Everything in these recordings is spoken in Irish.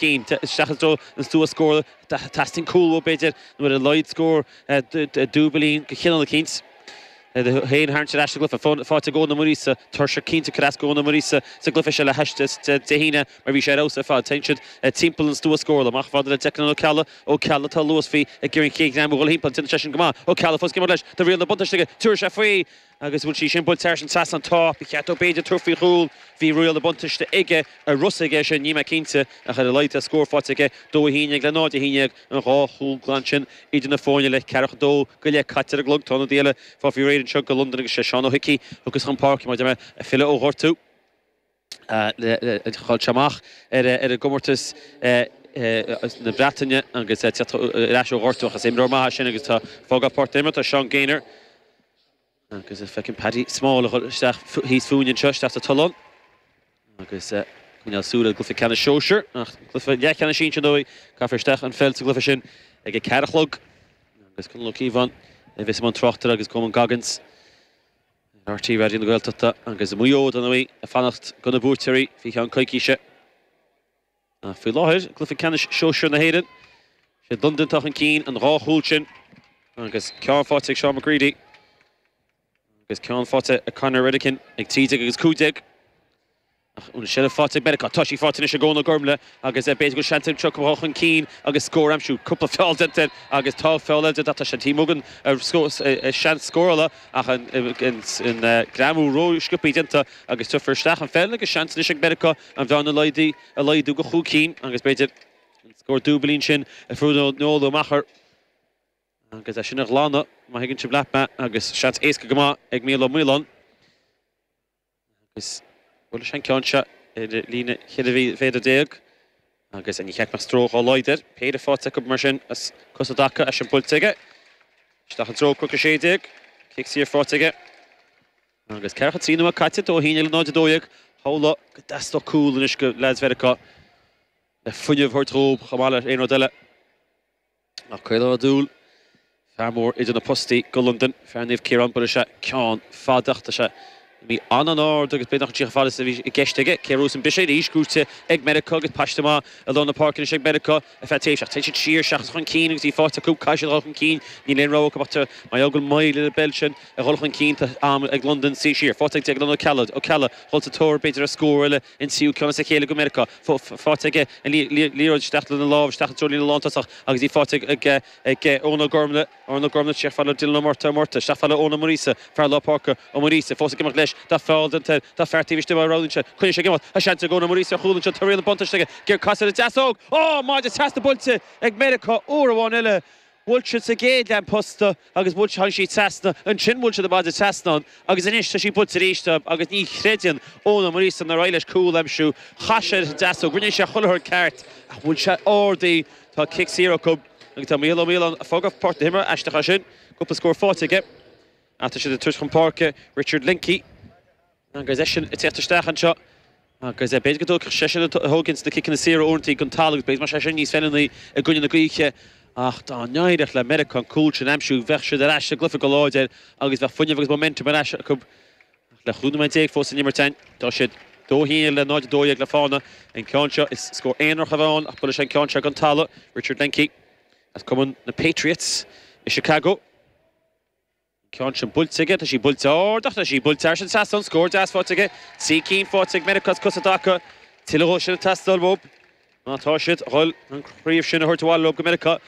déanta isteach i dtreo an stua scórála. Teastaíonn cúl uathu, b'fhéidir, nó ar a laghad scór dúbailín go chineál eicínt. Théann Harris ar ais sa gcluife. Faighte ag Eoin na Muiríosa. Tuirseach cinnte cad as go Eoin na Muiríosa sa gcluife seo le hais Dé hAoine mar bhí sé ar fheabhas ar fad. Téann siad timpeall an stua scórála. Ach maidir le Declan O Ceallaigh, Ó Ceallaigh tá luas faoi ag iarraidh an chéad ghreim a dhul thimpeall. Déanann seisean go maith. O Ceallaigh fós ag imirt leis. Tá riail na buntáiste aige. Tabharfaidh sé faoi. Agus bhfuil sí sin buailte thar an trasnán? Tá. Ba cheart dó b'fhéidir tabhairt faoi chúl. Bhí riail na buntáiste aige, an raibh a fhios aige é sin, níl mé cinnte, ach ar a laghad tá scór faighte aige. Dó a haon dhéag le náid a haon dhéag, an dhá chúl glan sin idir na foirne, le ceathracha dó go leith caite ar an gclog. Tá ionadaí eile ag fáil faoi réir anseo go Londain agus sé Seán Ó hIcí, tugtha chun páirce, maidir le, ag filleadh ó ghortú. Chaill sé amach ar an gcomórtas na Breataine agus teacht ar ais ó ghortú ach is imreoir maith é sin agus tá fágtha as páirc na himeartha Seán Gaynor agus feicim Paddy Small a dhul isteach thíos fúinne anseo, isteach sa tollán ag coinneáil súil ar an gcluiche ceannais sóisir, ach cluiche leathcheannais sinsir ar ndóigh, caithfear isteach an pheil sa gcluiche sin ag a ceathair a chlog agus Conall Ó Cíobháin a bheas i mbun tráchtaireachta agus Coman Goggins. ar RTÉ Raidió na Gaeltachta agus Maigh Eo dar ndóigh ag fanacht go na buaiteoirí faoi cheann coicíse. Ach faoi láthair, i gcluiche ceannais Sóisear na hÉireann, sé Londain atá chun cinn an dhá chúl sin agus ceann faighte ag Seán McGready agus ceann faighte ag Conor Redican ag 13 agus 15. Ach an seilbh faighte ag Meiriceá. Tá sí faighte anois ag Eoin Ó Gormlaigh agus b'fhéidir go bhfuil seans acu seo dul chun cinn agus scór a aimsiú. Cúpla feall déanta air agus tá feall eile déanta ach tá sé taobh amuigh den stua scórála ach an greamú ró-sciopthaí déanta agus tabharfar isteach an pheil agus seans anois ag Meiriceá an bhearna a laghdú go chúig cinn agus b'fhéidir an scór dúbailín sin a phionóladh amach ar agus é sin a ghlanadh, má thuigeann sibh leat mé, agus seans éasca go maith ag Míl Ó Maoláin. Agus buaileann sé an ceann seo ar líne cheithre mhéadar déag agus ní cheapfainn go mbeadh stró dhá laghad air. Péire faighte acu mar sin as cosa i dtaca. Í sin buailte aige. Isteach i dtreo Cnoc a Sé Déag. Cic saor faighte aige. Agus ceathracha trí nóiméad caite, dó a haon déag le náid a dó dhéag. Shamhlófá go dteastódh cúl anois go leads Mheiriceá le fuinneamh a thabhairt dhób chomh maith le haon rud eile. Nach caolóidúil! Fear mór idir na postaí go Londain, fear Naomh Ciarán, buaileann sé ceann fada, ach tá sé imithe an-an-ard agus b'fhéidir nach ndeachaigh sí chomh fada is a bhí i gceist aige. Cé a bhuafas an briseadh? Arís, gaibhte ag Meiriceá agus paiste maith i lár na páirce anois ag Meiriceá ar feadh tréimhse. Ach téann siad siar seachas chun cinn agus bhí fáilte acu, caithfidh siad a dhul chun cinn, níl aon rogha acu ach tá Maigh Eo ag moill ar an bpeil sin a dhul chun cinn, tá am ag Londain suí siar. Faighte ag Declan O'Callagh, Ó Ceallaigh, dhul sa tóir b'fhéidir ar scór eile, an tríú ceann as a chéile go Meiriceá. faighte aige an liathróid isteach lena lámh, isteach i dtreo líne lántosach agus í faighte ag Eoin Ó Gormaile, Eoin Ó Gormaile isteach fad le Dylan Ó Morta, Ó Morta isteach fad le Eoin Ó Muiríosa, fear lár páirce, Ó Muiríosa fós ag imeacht leis, tá fear den tóir, tá fear taobh istigh, roghnaíonn sé, coinníonn sé ag imeacht, tá seans ag Eoin Ó Muiríosa ar chúl anseo, tá riail an bhuntáiste aige, ag casadh ar an deasóg, oh! maide trasna buailte ag Meiriceá uair amháin eile. Bhuail siad sa gcéad leath an posta agus bhuail siad, tháinig siad trasna, ansin bhuail siad an maide trasna ann agus anois tá sí buailte aríst agus ní chreideann Eoin Ó Muiríosa nár éirigh leis cúl a aimsiú. Chas sé ar an deasóg, rinne sé chuile rud ceart ach bhuail sé ard í. Tá cic saor acu agus tá Micheál Ó Maoláin ag fágáil páirc na himeartha, aisteach é sin, cúpla scór faighte aige ach tá siad ag tabhairt chun páirce Richard Lingkey, Agus eisean ag teacht isteach anseo agus b'fhéidir go dtóigfeadh seisean tógann sé na ciceanna saora uaireantaí den talamh agus b'fhéidir go mbeadh sé sin níos feiliúnaí i gcoinne na gaoithe. Ach dá n-éireodh le Meiriceá an cúl sin a aimsiú bheadh siad ar ais sa gcluiche go láidir agus bheadh fuinneamh agus momentum ar ais acu. Ach le chúig nóiméad déag fós san imirt ann tá siad dó haon le 0-12 le fána. An ceann seo is scór aonarach a bheidh ann ach buailfidh sé an ceann seo den talamh. Richard Lehncke as cumann na Patriots i Chicago. ceann sin buailte aige, tá sí buailte ard ach tá sí buailte thar an trasnán, scór deas faighte aige, trí cinn faighte ag Meiriceá as cosa i dtaca, tuilleadh dhó sin ag teastáil uathu má tá siad dhul an chraobh sin a thabhairt abhaile leo go Meiriceá.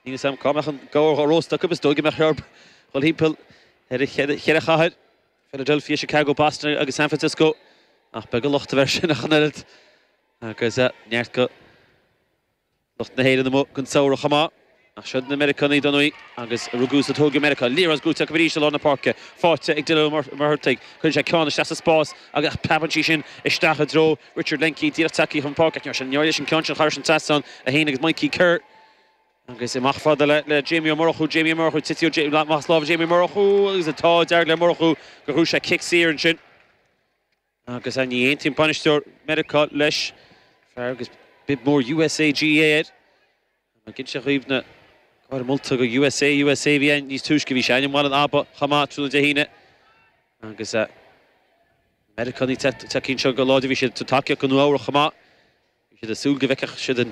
Níl 'fhios a'm cá mbeadh an gabhar dhá róstadh acu, is dóigh go mbeadh sé orthu dhul thimpeall ar na cheithre chathair, Philadelphia, Chicago, Boston agus San Francisco ach beag an locht a bheadh air sin ach an oiread agus neart go. Lucht na hÉireann amuigh don samhradh chomh maith. Ach siod na Meiriceánaigh dar ndóigh agus a rugadh is a tógadh i Meiriceá. Liathróid buaite acu arís i lár na páirce. Faighte ag Dylan Ó Muircheartaigh. Cuireann sé ceann isteach sa spás agus preabann sí sin isteach i dtreo Richard Lehncke díreach tagtha chun páirce. Ach níor éirigh leis an ceann sin thairis an trasnán a théann agus Mikey Kerr. Agus í amach fad le Jamie Ó Murchú. Jamie Ó Murchú. Tite amach as lámha Jamie Ó Murchú agus dar le Murchú gur thug sé cic saor ansin. Agus a, ní aontaíonn bainisteoir Meiriceá leis. Fear agus bib mór USA GAA air. An raibh ag inseacht dhaoibh na gártha molta do USA, USA a bhí ann níos túisce. Bhí sé ann i mBaile an Aba chomh maith tráthnóna Dé hAoine. Agus a, na Meiriceánaigh tagtha anseo go láidir. Bhí siad ag tabhairt tacaíocht do Nua-Eabhrac chomh maith. Bhí siad ag súil go bhfeicfeadh siad an.